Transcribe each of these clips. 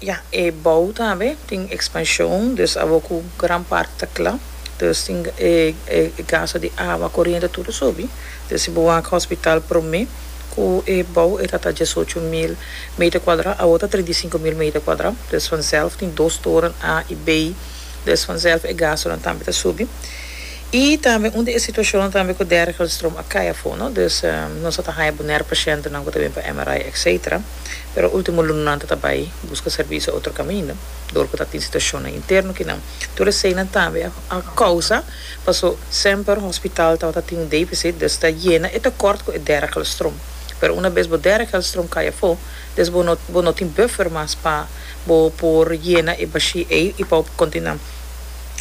Ya, e bou tambe tin expansion, dus abo cu gran parti ta cla, dus tin e gasto di awa, coriente tur a subi, dus si bo wak hospital prome cu e bou e ta ta diesocho mil meter cuadra, awo ta trinta y sinku mil meter cuadra, dus vanzelf tin dos toren A y B, dus vanzelf e gastonan tambe ta subi, y tambe un di e situacionnan tambe cu dergelstroom a cay afo, no, dus nos a ta haya bonaire pacientenan cu ta bini pa MRI, etcetera. pero ultimo lunanan ta ta bai buska servisio otro kaminda dor ku ta tin situashonnan interno kinan. Tur eseinan tambe a a kousa paso semper hospital tabata tin un defisit des ta yena e tekort ku e dera kelstrom pero una bes bo dera kelstrom kai afo des bo no bo no tin buffer mas pa bo por yena e bashi ei i pa bo kontinua.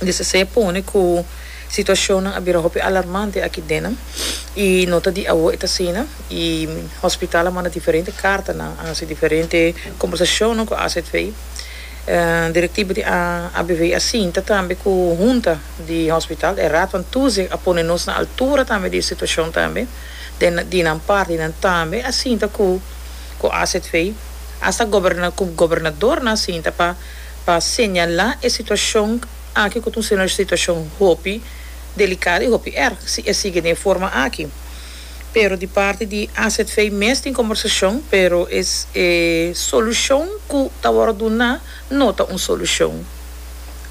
Di sese pone ku. Situacionnan a bira hopi alarmante aki dennan y no ta di awo e ta asina y hospital a manda diferente cartanan, a haci diferente conversacionnan cu azv. Directivo a abv a sinta tambe cu hunta di hospital, e Raad van Toezicht a pone nos na altura tambe di e situacion tambe, den di nan parti nan tambe a sinta cu cu azv, hasta gobernadornan a sinta pa pa señala e situacion Aki cu ta un seno di situacion hopi delicado y hopi erg si e sigui den forma aki. Pero di parti di AZV mes tin combersacion, pero e solucion cu ta worde duna no ta un solucion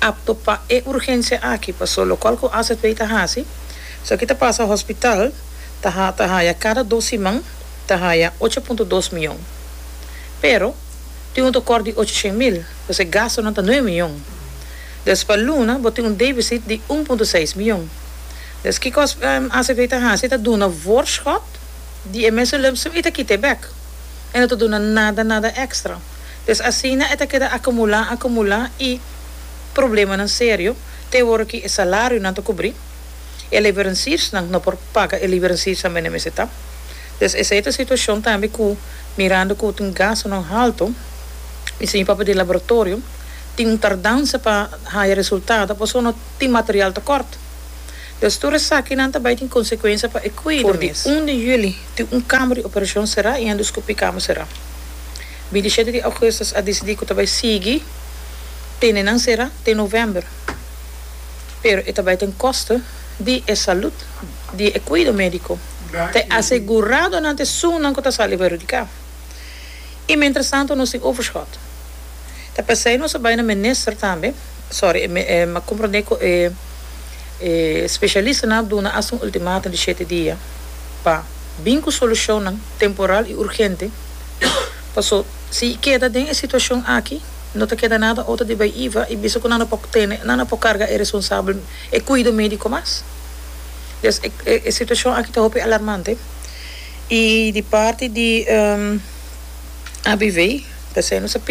apto pa e urgencia aki. Paso locual cu AZV ta haci, so aki ta pasa hospital ta ta haya cada dos siman ta haya ocho punto dos mion, pero tin un tocor di ochocienmil. Pues e gastonan ta nuebe miyon. Des pa luna bo tin un debisit di un punto seis miyon. Des kikos acv ta hasi ta duna voorschot di e mes zulem sin e ta kita e bek. E no ta duna nada nada extra. Des asina e ta keda acumula acumula y problemanan serio te wor ki e salarionan ta cubri, e leveranciersnan no por paga e leveranciersnan mende mester ta. Pues esei ta situacion tambe cu mirando cu tin gastonan halto, mi señor papá di laboratorio tin un tardansa pa haya resultado pasobra tin material tocort. Pues tur esakinan ta bay tin consecuencia pa e cuido mes. For di un di juli tin un cama di operacion cera y endoskopie cama cera. Binti shete di augustus a dicidi cu ta bay sigui tene nan cera te november pero e ta bay ta un costo. di e salud, di e cuido medico, t'e asegurado nan t'e sun nan cu ta sali perhudica. Y mientras tanto nos tin overschot. Ta pesey nos a bay na minister tambe, sorry, m'a comprende cu e specialista nan a duna hasta un ultimatum di shete dia pa bin cu solucionnan temporal y urgente, paso si e keda den e situacion aki no ta keda nada otro di bay iva y bisa cu nan no por tene, nan no por carga e responsable. E cuido medico mas. Des e situacion aki ta hopi alarmante y di parti di ABV ta haciendo sa.